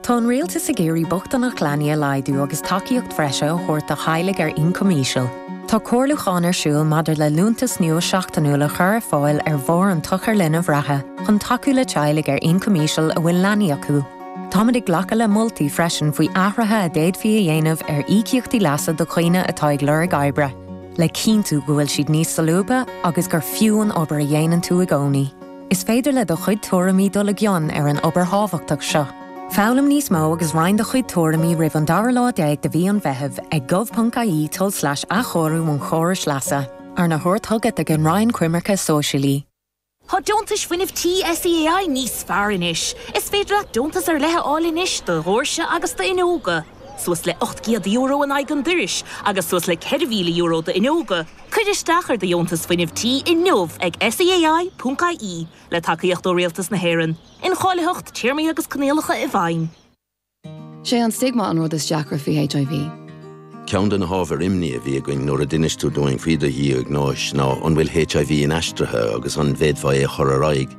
Tá an Rialtas ag iarraidh bochtaineacht leanaí a laghdú agus tacaíocht bhreise a thabhairt do theaghlaigh ar incoim íseal. Tá comhairliúchán ar siúl maidir le liúntas nua seachtainiúil a chur ar fáil ar bharr an tsochair linbh reatha chun tacú le teaghlaigh ar incoim íseal a bhfuil leanaí acu. Táimid ag glacadh le moltaí freisin faoi athruithe a d'fhéadfaí a dhéanamh ar íocaíochtaí leasa do dhaoine atá ag lorg oibre, le cinntiú go bhfuil siad níos solúbtha agus gur fiú an obair a dhéanann tú i gcónaí. Is féidir le do chuid tuairimí dul i gcion ar an obair thábhachtach seo. Foghlaim níos mó agus roinn do chuid tuairimí roimh an dara lá déag de mhí an Mheithimh ag gov.ie tulslais athchóiriú an chórais leasa, arna thabhairt chugat ag an Roinn Coimirce Sóisialaí. Tá Deontais Fuinnimh Tí SEAI níos fearr anois! Is féidir leat deontas ar leith a fháil anois do dhóirse agus d'fhuinneoga. suas le €800 in aghaidh an dorais agus suas le €4,000 d'fhuinneoga, cuir isteach ar do dheontas fuinnimh tí inniu ag SEAI.ie, le tacaíocht ó Rialtas na hÉireann. Incháilitheacht, téarmaí agus coinníollacha i bhfeidhm. Sé an stigma an rud is deacra faoi HIV. Ceann de na hábhair imní a bhí againn nuair a d'inis tú dúinn faoi do dhiagnóis ná an bhfuil HIV inaistrithe agus an bhféadfá é a chur ar aghaidh.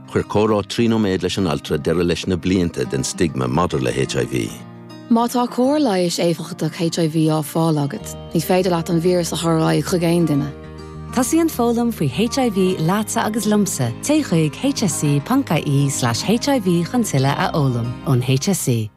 Chuir comhrá trí nóiméad leis an altra deireadh leis na blianta den stigma maidir le HIV. Má tá cóir leighis éifeachtach HIV á fáil agat, ní féidir leat an víreas a chur ar aghaidh chuig aon duine. Tosaíonn foghlaim faoi HIV leatsa agus liomsa, téigh chuig hse.ie/hiv chun tuilleadh a fhoghlaim ón HSE.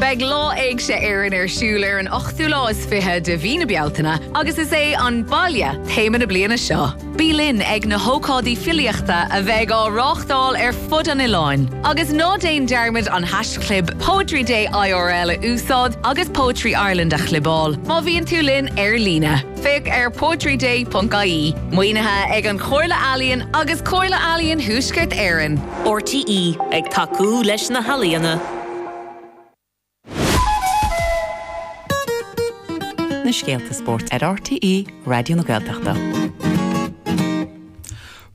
Beidh Lá Éigse Éireann ar siúl ar an ochtú lá is fiche de mhí na Bealtaine agus is é 'An Baile' téama na bliana seo. Bí linn ag na hócáidí filíochta a bheidh á reáchtáil ar fud an oileáin. Agus ná déan dearmad an hash-chlib Poetry Day IRL a úsáid agus Poetry Ireland a chlibeáil má bhíonn tú linn ar líne. Féach ar poetryday.ie. Maoinithe ag An Chomhairle Ealaíon agus Comhairle Ealaíon Thuaisceart Éireann. RTÉ ag tacú leis na healaíona. Na scéalta spóirt ar RTÉ Raidió na Gaeltachta.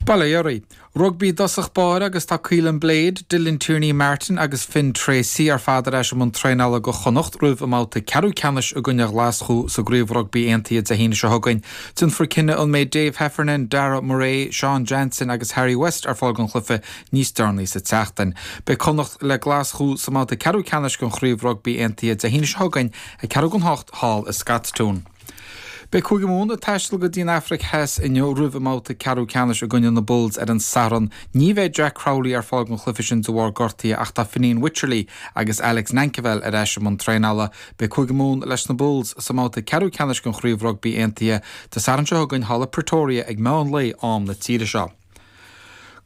Bail ó Dhia oraibh. Rugbaí i dtosach báire agus tá Caolin Blade, Dylan Tierney Martin agus Finn Treacy ar fad ar ais i mbun traenála do Chonnacht roimh a mbabhta ceathrú ceannais i gcoinne Ghlaschú sa gCraobh Rugbaí Aontaithe Dé hAoine seo chugainn. Déanfar cinneadh an mbeidh Dave Heffernan, Darragh Murray, Sean Jansen agus Harry West ar fáil don chluife Níos deireanaí sa tseachtain, beidh Connacht le Glaschú sa mbabhta ceathrú ceannais den Chraobh Rugbaí Aontaithe Dé hAoine seo chugainn ag ceathrú chun a hocht thall i Scotstoun. Beidh Cúige Mumhan ag taisteal go dtí an Afraic Theas inniu roimh a mbabhta ceathrú ceannais i gcoinne na Bulls ar an Satharn. Ní bheidh Jack Crowley ar fáil don chluife sin de bharr gortaithe ach tá Fineen Wycherley agus Alex Nankivell ar ais i mbun traenála. Beidh Cúige Mumhan leis na Bulls sa mbabhta ceathrú ceannais den Chraobh Rugbaí Aontaithe Dé Sathairn seo chugainn thall i Pretoria ag meán lae am na tíre seo.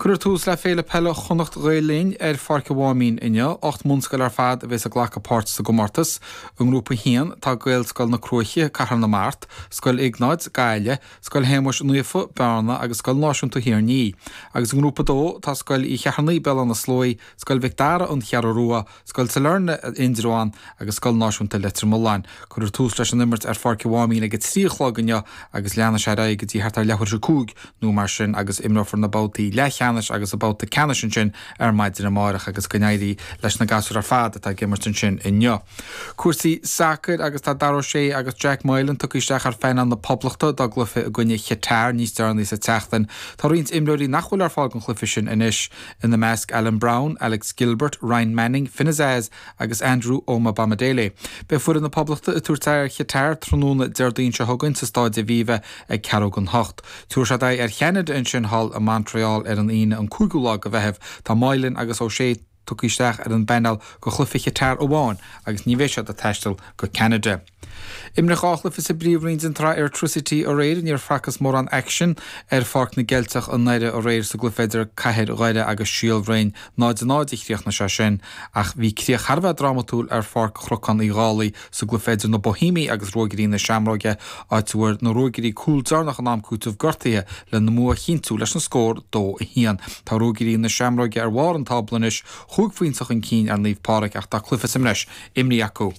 Cuireadh tús le Féile Peile Chonnacht Ghael Linn ar Pháirc a' Mháimín inniu. Ocht mbunscoil ar fad a bhéas ag glacadh páirt sa gcomórtas. I nGrúpa 1 tá Gaelscoil na Cruaiche, Cathair na Mart, Scoil Iognáid, Gaillimh, Scoil Shéamuis Naofa, Bearna agus Scoil Náisiúnta Thír an Fhia. Agus i nGrúpa 2 tá Scoil Uí Cheithearnaigh, Béal Átha na Sluaighe, Scoil Mhic Dara, An Cheathrú Rua, Scoil Sailearna, Indreabhán agus Scoil Náisiúnta Leitir Mealláin. Cuireadh tús leis an imirt ar Pháirc a' Mháimín ag a trí a chlog inniu agus leanfaidh sé ar aghaidh go dtí thart ar leathuair théis a cúig nó mar sin agus imreofar na babhtaí leathcheannais agus an babhta ceannais ansin ar maidin amárach agus go n-éirí leis na gasúir ar fad atá ag imirt ansin inniu. Cúrsaí sacair agus tá Dara Ó Sé agus Jack Moylan tugtha isteach ar phainéal na Poblachta dá gcluiche i gcoinne Chatar níos deireanaí sa tseachtain. Tá roinnt imreoirí nach bhfuil ar fáil don chluiche sin anois. ina measc Alan Brown, Alex Gilbert, Ryan Manning, Finn Azaz agus Andrew Omobamidele. Beidh foireann na Poblachta ag tabhairt aghaidh ar Chatar tráthnóna Déardaoin seo chugainn sa Stáid Aviva ag ceathrú gon hocht. Tabharfaidh siad aghaidh ar Cheanada ansin thall i Montreal ar an Aoine an 5ú lá go Mheitheamh. Tá Moylan agus O'Shea tugtha isteach ar an bpainéal go chloífe Chatar amháin agus ní bheidh siad ag taisteal go Ceanada. Imríodh dhá chluife sa bPríomhroinn den tsraith Airtricity aréir. Níor facthas mórán aicsin ar Pháirc na gCeilteach i nDoire aréir sa gcluife idir Cathair Dhoire agus Síol Bhroin. 0 a 0 a chríochnaigh sé sin ach bhí críoch thar a bheith drámatúil ar Pháirc Chnocán Uí Dhálaigh sa gcluife idir na Bohímigh agus Ruagairí na Seamróige áit a bhfuair na Ruagairí cúl deireanach in am cúitimh gortaithe lena mbua a chinntiú leis an scór 2 1. Tá Ruagairí na Seamróige ar bharr an tábla anois, chúig phointe chun cinn ar Naomh Pádraig ach tá cluife sa mbreis imrithe acu.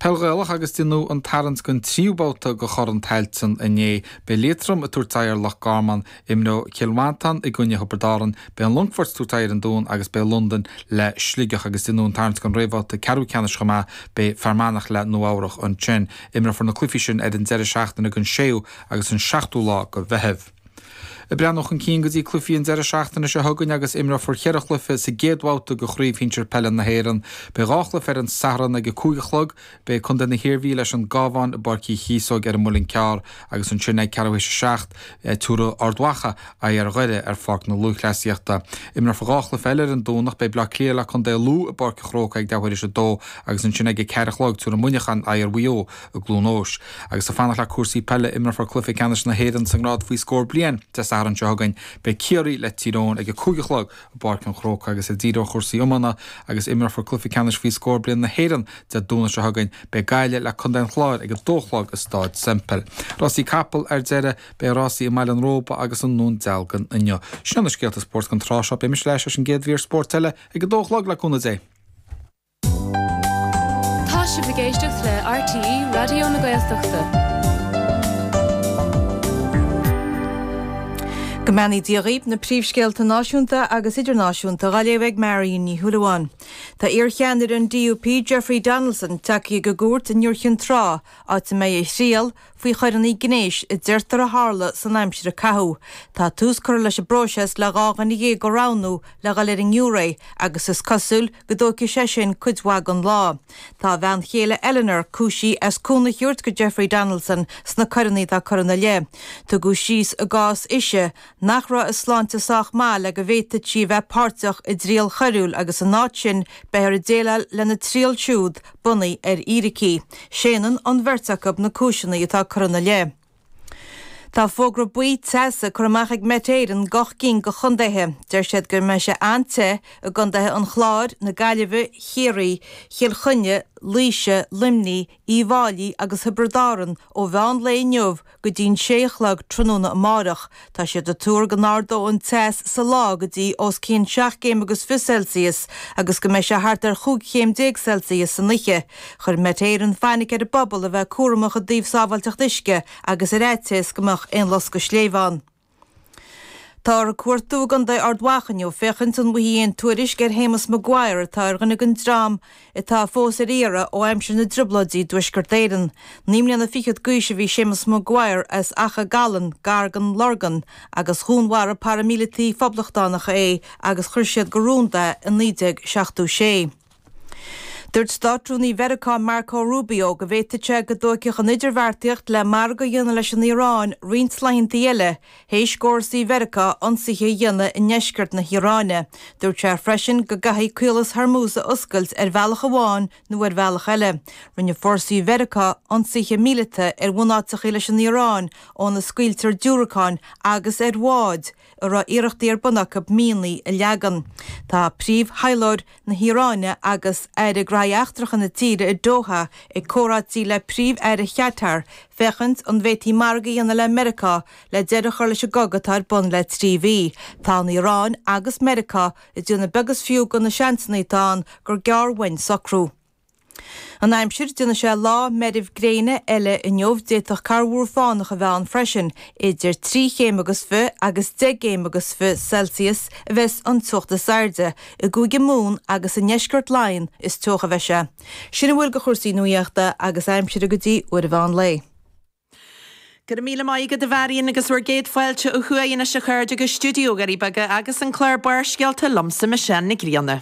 Peil Ghaelach agus déanadh an tarraingt don tríú babhta go Corn Tailteann inné. Beidh Liatroim ag tabhairt aghaidh ar Loch Garman, imreoidh Cill Mhantáin i gcoinne Thiobraid Árann, beidh an Longfort ag tabhairt aghaidh ar an Dún agus beidh Londain le Sligeach. Agus déanadh an tarraingt don réamhbhabhta ceathrú ceannais chomh maith, beidh Fear Manach le Nua Eabhrach ansin. Imreofar na cluichí sin ar an deireadh seachtaine den 6ú agus an 7ú lá go Mheitheamh. Ag breathnú chun cinn go dtí cluichí an deireadh seachtaine seo chugainn agus imreofar ceithre chluiche sa gcéad bhabhta de Chraobh Shinsir Peile na hÉireann. Beidh dhá chluiche ar an Satharn ag a cúig a chlog. Beidh contae na hIarmhí leis an gCabhán i bPáirc Uí Chíosóig ar an Muileann gCearr agus ansin ag ceathrú théis a seacht a thabharfaidh Ard Mhacha aghaidh ar Dhoire ar Pháirc na Lúthchleasaíochta. Imreofar dhá chluiche eile ar an Domhnach. Beidh Bleá Cliath le contae Lú i bPáirc a Chrócaigh ag leathuair théis a dó agus ansin ag a ceathair a chlog tabharfaidh Muineachán aghaidh ar Mhaigh Eo. i gCluain Eois. Agus ag fanacht le cúrsaí peile, imreofar cluiche ceannais na hÉireann sa ngrád faoi scór bliain Dé Sathairn seo chugainn. Beidh Ciarraí le Tír Eoghain ag a cúig a chlog i bPáirc an Chrócaigh agus ag díriú ar chúrsaí iomána agus imreofar cluiche ceannais faoi scór bliain na hÉireann Dé Domhnaigh seo chugainn. Beidh Gaillimh le Contae an Chláir ag a dó a chlog i Stáid Semple. Rásaí capall Ar deireadh, beidh rásaí i mBaile an Róba agus i nDún Dealgan inniu. Sin iad na scéalta spóirt don tráth seo. Beidh mise ar ais leis an gcéad mhír spóirt eile ag a dó a chlog le cúnamh Dé. Tá sibh ag éisteacht le RTÉ Raidió na Gaeltachta. Go mbeannaí Dia dhaoib, na príomhscéalta náisiúnta agus idirnáisiúnta dha léamh ag Marion Ní Shúilleabháin. Tá iar-cheannaire an DUP, Jeffrey Donaldson, tagtha chuig cúirt in Iúr Chinn Trá, áit a mbeidh a thriail, faoi choireanna gnéis a deirtear a tharla san aimsir a caitheadh. Tá tús curtha leis an bpróiseas le dhá dhuine dhéag a roghnú le dhul ar an ngiúiré agus is cosúil go dtóigfaidh sé sin cuid mhaith den lá. Tá a bhean chéile Eleanor cúisithe as cúnamh a thabhairt go Jeffrey Donaldson sna coireanna atá curtha ina leith. Tugadh síos ina cás sise nach raibh a sláinte sách maith le go bhféadfadh sí a bheith páirteach i dtriail choiriúil agus in áit sin beifear ag déileáil lena triail siúd bunaithe ar fhíricí. Séanann an bheirt acu na cúiseanna atá curtha ina leith. Tá fógra buí teasa curtha amach ag Met Éireann go ocht gcinn go chontaetha. Deir siad go mbeidh sé an-te i gcontaetha an Chláir, na Gaillimhe, Chiarraí, Chill Chainnigh, Laoise, Luimnigh, Uíbh Fháilí agus Thiobraid Árann ó mheán lae inniu go dtí'n sé a chlog tráthnóna amárach. Tá siad a' tuar go n-ardóidh an teas sa lá go dtí os cionn seacht gcéim agus fiche Celsius agus go mbeidh sé thart ar chúig chéim déag Celsius san oiche. Chuir Met Éireann fainic ar an bpobal a bheith cúramach i dtaobh sábháilteacht uisce agus ar fhaitíos go mbeadh aon loscadh sléibhe ann. Táthar ag cuartú i gContae Ard Mhacha inniu féachaint an bhfaighfí aon tuairisc ar Shéamus Maguire atá ar dhuine den dream atá fós ar iarraidh ó aimsir na dTrioblóidí i dTuaisceart Éireann. Naoi mbliana fichead d'aois a bhí Séamus Maguire as Achadh Galláin gar den Lorgain agus dhúnmharaigh paraimíleataigh phoblachtánacha é agus cuireadh go rúnda é i 1976. Dúirt Státrúnaí Mheiriceá Marco Rubio go bhféadfadh sé go dtógfadh an idirbheartaíocht le margadh a dhéanamh leis an Iaráin roinnt laethanta eile théis d'fhórsaí Mheiriceá ionsaithe a dhéanamh i ndeisceart na hIaráine. Dúirt sé freisin go gcaithfidh Caolas Hormuz a oscailt ar bhealach amháin nó ar bhealach eile. Rinne fórsaí Mheiriceá ionsaithe míleata ar bhunáiteacha leis an Iaráin óna scaoiltear diúracáin agus ar bháid a raibh iarrachtaí ar bun acu mianaigh a leagan. Tá príomh-thaidhleoir na hIaráine agus Aire Gnoithe Eachtracha na tíre i Doha i gcomhráití le Príomh-Aire Chatar féachaint an bhféadfaí margadh a dhéanamh le Meiriceá le deireadh a chur leis an gcogadh atá ar bun le trí mhí. Tá an Iaráin agus Meiriceá ag déanamh beag is fiú de na seansanna atá ann gur gearr uainn socrú. An Aimsir, Déanfaidh sé lá meirbh gréine eile inniu, d'fhéadfadh corrmhúr fánach a bheith ann freisin. Idir trí chéim agus fiche agus deich gcéim agus fiche Celsius a bheas an teocht is airde. I gCúige Mumhan agus i ndeisceart Laighean is teocha a bheidh sé. Sin a bhfuil de chúrsaí nuaíochta agus aimsire go dtí uair eicínt an lae. Go raibh míle maith agat a Mharion agus bhur gcéad fáilte ó thuaidh anois a chairde go Stiúideo Dhoirí Beaga agus an clár Barrscéalta liomsa Michelle Nic Grianna.